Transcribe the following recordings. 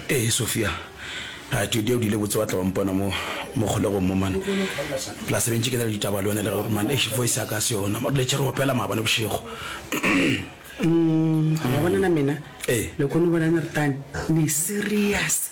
ee eh, sofia a jodi o dile botse wa tla wa mpona mo mo kgolegong mo mane plus bentse ke na le ditaba le yone le gore mane ex voice ya ka se yona mo letse re opela maabane bošego mm, ga bonana mena ee eh. le kgone bonane re tane ne serious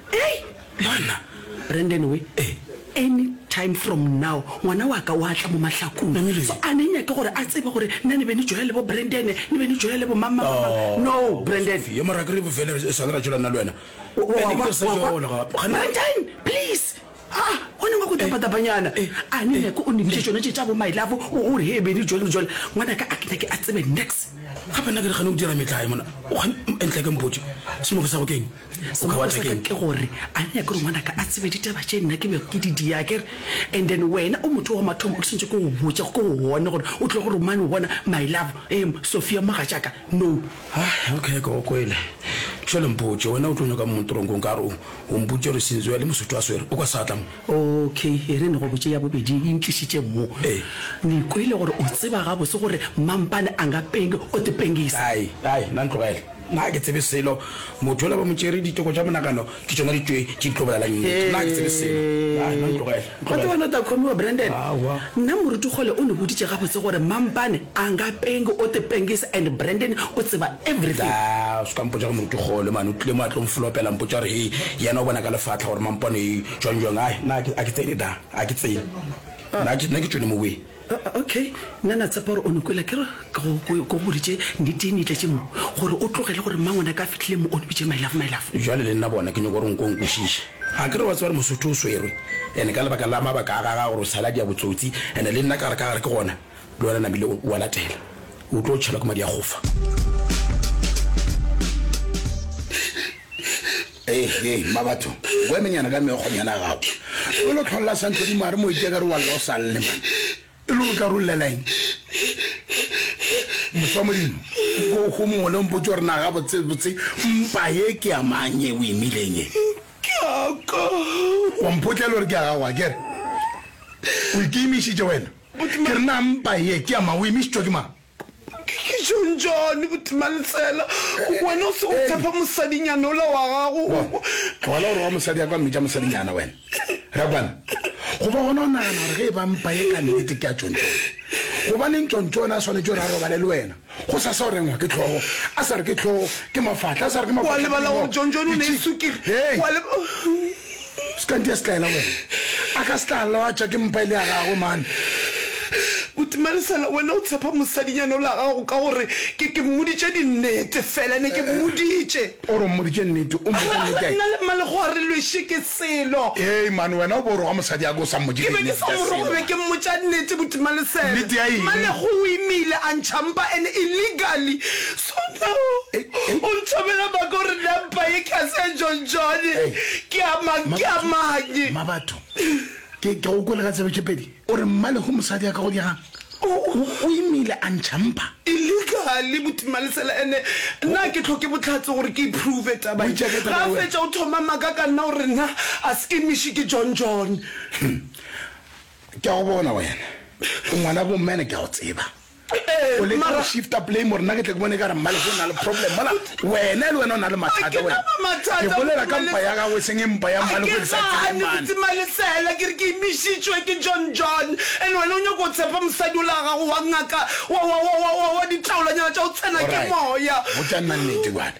Hei! Monna! Brandon we, any time from now ngwana wa ka wa tla mo mahlakong. Namile. So a ne nyake gore a tsebe gore nna ne be ni joya le bo Brandon, ni be ni joya le bo mang mang mang mang. No, Brandon! Sofia, mara akere bofele re swanela tšola nna le wena. Wa kwa, wa kwa. Brandon! Please! Ha, go nyakwa go tapatapanyana. A ne nyako o nebiše tšona tše tša bo my love, o gore he bene jwale le jwale. Ngwanaka a ke nyake a tsebe nex. Gape nna ke re gane o dira metlae mona. O gane entle ke mpotše. Semoko sa go ke eng? O ka batla ke eng? Ke gore a ne nyake gore ngwanaka a tsebe ditaba tše nna ke bego ke di dia ke re. And then wena o motho wa mathomo o ke swantše ke go botše ke go bone gore o tle go romane o bona my love, em, Sophia mogatšaka, no. Hai, okay, ke go kwele. Tšho le mpotše, wena o tlo nyakang mo ntorong ko? Nkare o, o mpotše gore Sinzwe a le Mosotho a swere o kwa seatla mo? Okay, e re ne go botše ya bobedi e ntlišitšeng mo. Ee. Ni kwele gore o tseba gabotse gore mampane a nga penge o te pengisa. Hai, hai, na ntlogele. Na ga ke tsebe selo. Motho yola ba mo tšere diteko tša monagano ke tšona ditšwe tše di tlo bolelang nnete. Na ga ke tsebe selo. Hai, na ntlogele. Wa tseba wena o tla khomiwa, Brandon. Aowa. Nna moruti Kgole o niboditše gabotse gore mampane a nga pengi o te pengisa and Brandon o tseba everything. Daa, o se ka mpotša ka moruti Kgole mane, o tlile mo a tlo nflopela a mpotša gore he yena o bona ka lefatla gore mampane jwang jwang. Ai, nna a ke, a ke tsene daa, a ke tsene. Nna ke, nna ke tšwele moweng. Okay, nna na tshepa gore o no kwela kere ke go boditše nnetee ne itletše mo gore o tlogele gore mmangwane a ka fitlhile mo o ne bitše mailafo mailafo. Jwale le nna bona ke nyoko gore nko nkwešiše. A kere wa tseba gore Mosotho o swerwe ene ka lebaka la mabaka a gaga gore o sale a dia botsotsi ene le nna ka gare ka gare ke gona le wena namile o a latela o tlo tšhelwa ke madi a gofa. Hehe, Mabatho, o emenyana ka meokgonyana ya gago. O lo tlholela Santlodimo a re mo itše ka re wa lla o sa lle man. E le o tla ro llela eng? Mosa wa Modimo, go go mongwe le mpotse gore na ga botse botse mpa ye ke ya mang ye o e mileng ye? Ke ya ka. Wa mpotlela gore ke ya gago akere? O ikimišitše wena. Ke re na mpa ye ke ya mang o imišitšwa ke mang? Hlonjane Botimaletsela, wena o se o phepa mosadinyana ola wa gago. Tlogela go roga mosadi ya ka mmitša mosadinyana wena. Rakwane, go ba gona o nagana gore ge e ba mpa ye ka nnete ke ya Tšontšone, gobaneng Tšontšo yona a swanetše gore a robale le wena? Go sa sa o rengwa ke tlhogo, a sa re ke tlhogo, ke mafahla, a sa re ke mafahla, ke dinoko, ke tšhi. Hei! Se ka ntia setlaela wena. A ka se tla lwatša ke mpa e le ya gagwe, mane. Buti Marisela, wena o tshepa mosadinyana o la gago ka gore ke, ke mmoditše dinnete fela. Ne ke mmoditše. O re o mmoditše nnete, o mmoditše nnete ya eng? Nna le Mmalego re lwešwe ke selo. Hei, mane, wena o bo o roga mosadi ya ka o sa mmoditše dinnete tša selo. Ke be ke sa mo roga, ke be ke mmotša nnete, Buti Malesela. Nnete ya eng? Mmalego o imile a ntšha mpa, and illegally. Thotao, o nthomela maka o re na mpa ye tlase ya John John ke a mang, ke a mang? Mabatho, ke go kwele ka tsebe tše pedi, o re mmale go mosadi a ka go diega, o imile a ntšha mpa. Illegally, Botimalesela, ene na ke tlhoke bohlatse gore ke iprove taba ye? Ga a fetša o thoma maka ka nna o re na a se imiše ke John John. Ke a go bona wena o ngwana bo mene, ke a go tseba. o leka go shifta blame gore nna ke tle ke bone ka re mmalese o na le problem mola wena le wena o na le mathata wena ke bolela ka mpa ya gago e seng e mpa ya mmalese ke sa tseemane ke re ke imišitšwe ke john john and wena o nyako o tshepa mosadi o la gago wa ngaka wa ditaolanyana tša o tsena ke moya botša nna nnete bjale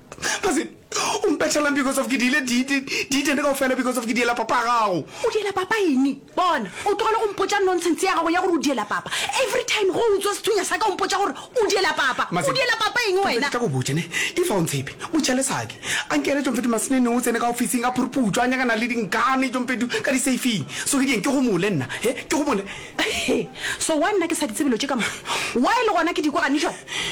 Ga se o mpethelang because of ke diile diitene kao fela because of ke diela papa gago. O diela papa ene? Bona, o tlogele go mpotsa nonsense ya gago ya gore o diela papa. Every time go utswa sethunya sa ka o mpotsa gore o diela papa. O diela papa eng wena? Ke tla go botse ne, if ga o ntshepe, botša lesake. A nkele tšompetu masenene o tsene ka ofising a phuruputšwa a nyakana le dinkane tšompetu ka di-safing. So ke dieng ke gomole nna, he, ke gomole. He, so why nna ke sa di tsebe lo tše ka mo? Why le gona ke di kwa gane jwa?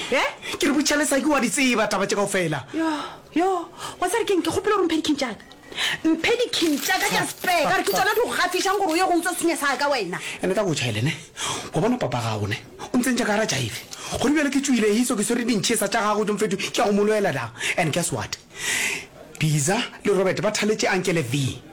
He? Ke re botša le sa ke wa di tseba taba tše kaofela. Yo, yo, wa tsa re keng ke kgopele gore mphe dikhing tšaka. Mphe dikhing tšaka tša spare ka re ke tšona di go gafišang gore o ye go utswa senya sa ka wena. Ene ka botšha ele ne, wa bona papa gago ne, o ntse ntša ka gara jaive. Godi bjale ke tšwile he so ke swere dintšhesa tša gago tšo mfetu ke ya go mo lwela da. And guess what? Biza le Robert ba thaletše ankele Vee.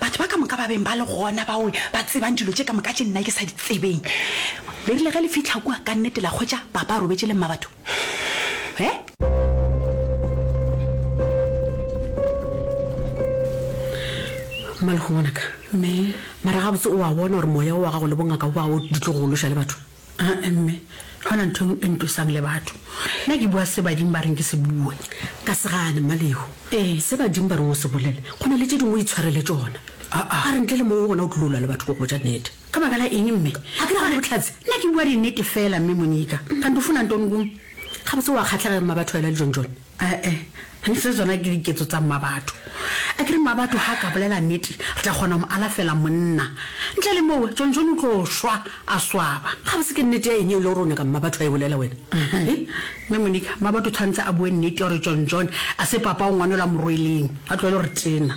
Batho ba ka moka ba beng ba le gona bao ba tsebang dilo tše ka moka tše nna ke sa di tsebeng le rile ge le fihla kua ka nnete la hwetša Papa a robetše le Mmabatho. He? Mmalego ngwanaka. Mme. Mara gabotse o a bona gore moya o wa gago le bongaka bo a o di tlo go loša le batho? Aa mme, ga ona ntho e ntosang le batho. Nna ke bua se badimo ba reng ke se bue. Ka se gane, Mmalehu. Se badimo ba reng o se bolele, go na le tše dingwe o itshware le tšona. Aa, a re ntle le moo gona o tlilo lwa le batho ko botša nnete. Ka baka la eng mme? A ke re gane bohlatse? Nna ke bua dinnete feela, Mme Monika. Kanti o fona ntoni kumu? Gabotse o a kgahlega eng Mmabatho wena le John John? Ee, ntle tsona ke diketso tsa Mmabatho. A ke re Mmabatho ha a ka bolela nnete, re tla kgona go mo alafela monna. Ntle le moo, Tšontšone o tlo šwa a swaba. Gabotse ke nnete ya eng yeo e le gore o nyaka Mmabatho a e bolela wena? Mme Monica, Mmabatho o tshwanetse a bue nnete ya gore Tšontšone a se papa o ngwanelwa morweleng, a tlohele go re tena.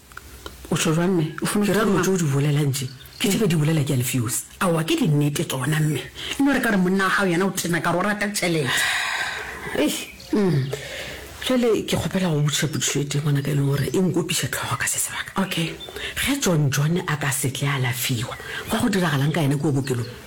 O tšho jwang mme? O funa ke ra go tšo di bolela ntše. Ke tšebe di bolela ke Alfios. Aowa ke di nete tsona mme. E no re ka re monna wa gago yena o tena ka re o rata tšhelete. Eish umm jwale ke kgopela go botšiša potšišo e tee ngwana ka e leng gore e nkopiša tlhogo ka se sebaka. Okay ge John John a ka se tle a lafiwa go a go diragalang ka yena kua bokelong?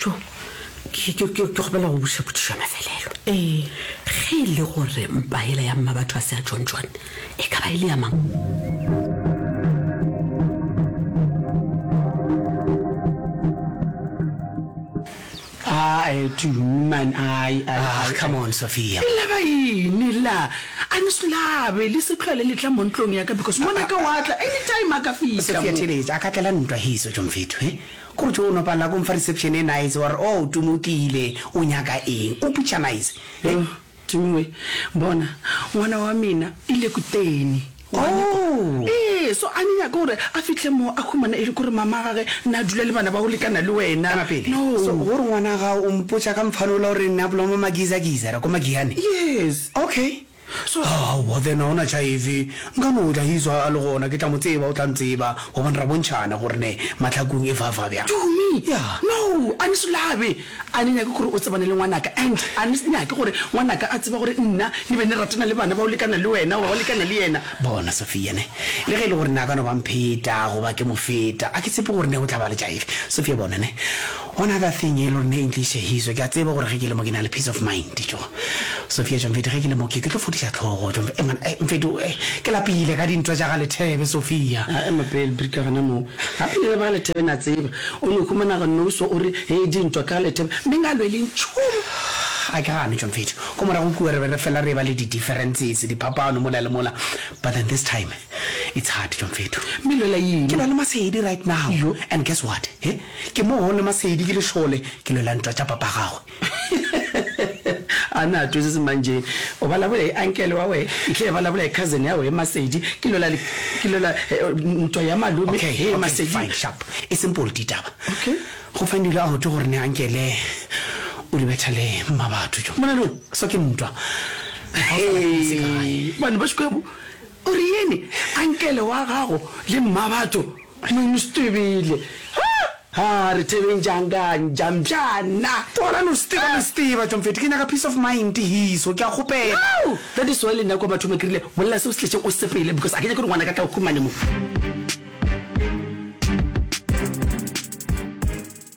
jo ke kgopela go buša potšišo ya mafelelo ee ge e le gore mpa ela ya mma batho a se ya john john e ka ba e le ya mang man ah, come on sophia e laba ene la a ne solabe le setlhole le tla mo ntlong yaka because ngwana ka watla anytime a ka fitlha a ka tlela ntwa hiso jomfetho e Go tšo no palela ko nfa reception e nice wa re oh Tumi o tlile o nyaka eng o putša nice Heng Tumi we bona ngwana wa mina e le kuteni wa nyakwa Oh. Ee so a nyaka gore a fihle mo a humana e le kore mama gage na a dula le bana ba go lekana le wena Ema pele No so go re ngwana gago o mpotša ka mfanola o re na bloma magiza giza ra ko magiyane Yes. Okay. So, aowa, then ga ona tšhaefe. Nka no tla he's a le gona. Ke tla mo tseba, o tla ntseba. Gobane ra bontšhana gore ne mahlakong e fa-fa bjang. To me? Yeah. No, a ni sulabe. A ni nyake gore o tsebane le ngwanaka and a ni nyake gore ngwanaka a tseba gore nna ni be ni ratana le bana ba go lekana le wena goba ba lekana le yena. Bona, Sophia, ne, le ge e le gore ne a ka no ba mpheta goba ke mo feta, a ke tshepe gore ne go tla ba le tšhaefe. Sophia, bona, ne. Go na ka thing e le gore ne e ntlišehizo, ke a tseba gore ge ke le mo ke na le peace of mind, tjo. Sophia, Tjo Mfeti ge ke le mo ke ke tlo fodiša tlhogo, tjo Mf-, Engwana, eh, Mfeti o, eh, ke lapile ka dintwa tša ga Lethebe, Sophia. A ema pele Brika gona moo. Gape le ba Lethebe na tseba, o no humana go nouso o re, hee dintwa ka ga Lethebe, mme nga lwe le ntšhung. A ke gane, tjo Mfeti, ko morago kua re be re fela re eba le di differences, diphapano mola le mola, but then this time, it's hard, tjo Mfeti. Mme lwela eng? Ke lwa le Masedi right now, Yo. and guess what, he? Ke mo go le masedi ke lešole, ke lwela ntwa tša papa gagwe. A na a twezezi mang Jane? O ba labolai uncle wa we, ntle e ba labolai cousin ya we Masedi, ke lwela ke lwela ntwa ya malome Okay, he okay, Masedi. fine, sharp. E seng polo ditaba. Okay. Go Fandile a go tšo gore ne uncle o di betha le mma batho tšo mona lo swa ke ntwa. Hee, bane ba škwebo o re yene uncle wa gago le mma batho. Tlung Stibile. Haa! Haa! Re tebeng jang ka Njamjana? Tlogelang o steba le steba, Tšomfeti. Ke nyaka peace of mind, Hiso. Ke a kgopela. Yow! That is why le nna kwa bathong ba ke rile, Bolela se o se tletšeng o sepele because a ke nyake gore ngwanaka a tla o khumane mo.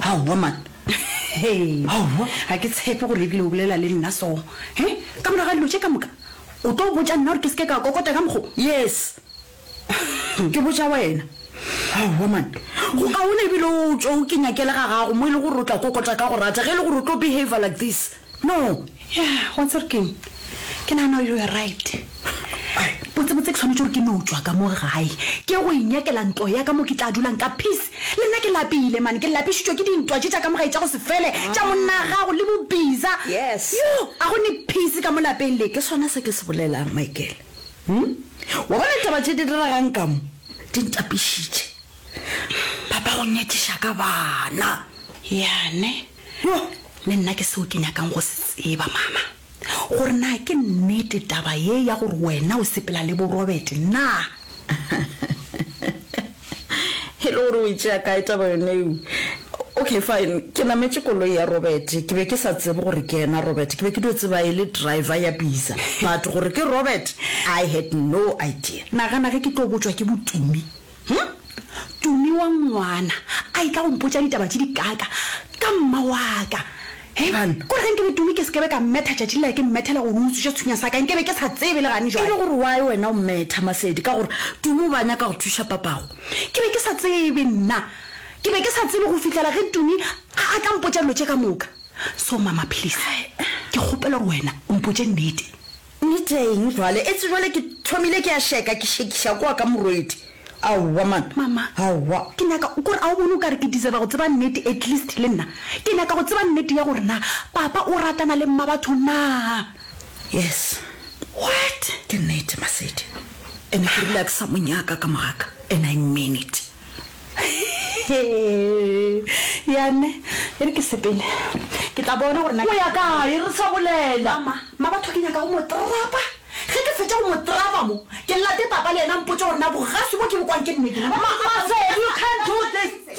Aowa man. Aowa. Ga ke tshepe gore ebile o bolela le nna so. He? Ka morago ga dilo tše ka moka. O tlo botša nna gore ke seke ka kokota ka mokgo? Yes. Ke botša wena. Aowa man. Go kaone ebile o tšo o ke nyakele ga gago mo e le gore o tla kokota ka go rata ge e le gore o tlo behavior like this. No, ya, wa tseba gore keng? Ke nagana gore you are right. Botsebotse ke tshwanetse gore ke no tšwa ka mo gae, ke go inyakela ntlo ya ka mo ke tla dulang ka peace. Le nna ke lapile mane, ke lapišitšwe ke dintwa tše tša ka mo gae tša go se fele, tša monna gago le bobiza. Yes. Yo, ga go ne peace ka mo lapeng le. Ke sona se ke se bolelang, Michael. Hm? Wa bona ditaba tše di diregang ka mo? Di ntapišitše. Papa go nyakiša ka bana. Yane. Hyo! Le nna ke seo ke nyakang go se tseba, Mama, gore na ke nnete taba ye ya gore wena o sepela le bo Robert na? E le gore o e tšea kae taba yone eo? Okay, fine, ke nametše koloi ya Robert. Ke be ke sa tsebe gore ke yena Robert. Ke be ke dio tseba e le driver ya bisa, but gore ke Robert, I had no idea. Nagana ge ke tlo botšwa ke botumi Hm? Tumi wa ngwana a etla go mpotša ditaba tše dikaaka ka mma waka. He ban, kore ge nkebe Tumi ke sekebe ka mmetha tšatši lela ke mmethela gore o utswitše sethunya sa ka nkebe ke sa tsebe le gane jwale. E le gore why wena o mmetha Masedi ka gore Tumi o be a nyaka go thuša papago? Ke be ke sa tsebe nna. Ke be ke sa tsebe go fihlela ge Tumi a a tla mpotša dilo tše ka moka. So mama please ke kgopela gore wena o mpotše nnete. Nneteng bjale, etse bjale ke thomile ke a šeka, ke šekiša kwa ka morwedi. Aowa man, Mama, aowa. ke nyaka, kore a o bone o kare ke deserva go tseba nnete, at least le nna ke nyaka go tseba nnete ya gore na Papa o ratana le Mmabatho na. Yes, What? ke nnete Masedi, and ke rile a ke sa mo nyaka ka mogaka, and I mean it. Yane, e re ke sepele. Ke tla bona gore na. O ya kae re sa bolela? Mama, mma batho ke nyaka go mo trapa. Ge ke fetša go mo trapa mo, ke late papa le yena a mpotše gore na bogaswi bo ke bo kwang ke nnete na. Mama, Masedi, you can't do this.